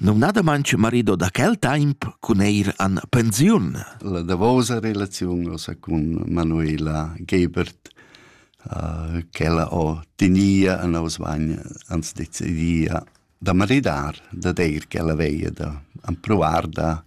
numnadamain marido da quel temp cun eir an pensiun. La davosa relaziun ossa cun Manuela Gebert, uh, ch'ella ho tenia a nos vagn ans decidia da maridar, da deir ch'ella veia da ampruar da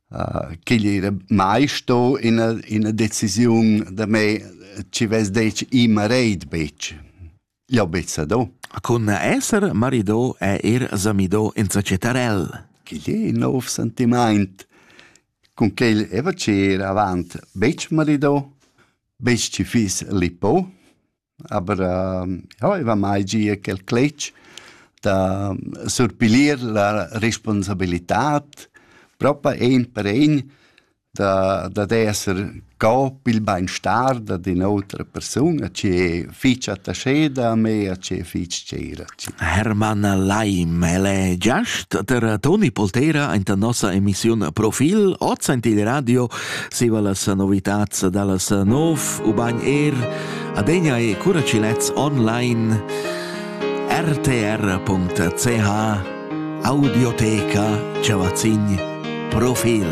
ch'igl era mai sto ina, ina decisiun da me ci vess detg i mareid betg. Jau bezza do. Cun esser marido è er samido in societarell. Ch'igl è in nov sentiment. Cun quel eva ci er avant betg marido, betg ci fiss lipo. Aber äh, ja, ich war mai gia quel cletg da surpilir la responsabilitad propa ein per ein da, da esser co pil beinstar da d'un'otra persuna che fich attascheda a me a che fich tgira. Hermann Leim, el è giast da Toni Poltera in la nossa emissiun Profil, oz in il radio, siva las novitats dallas nov, ubain er adegna e curacilets online rtr.ch Audioteca Ciavazin Profil.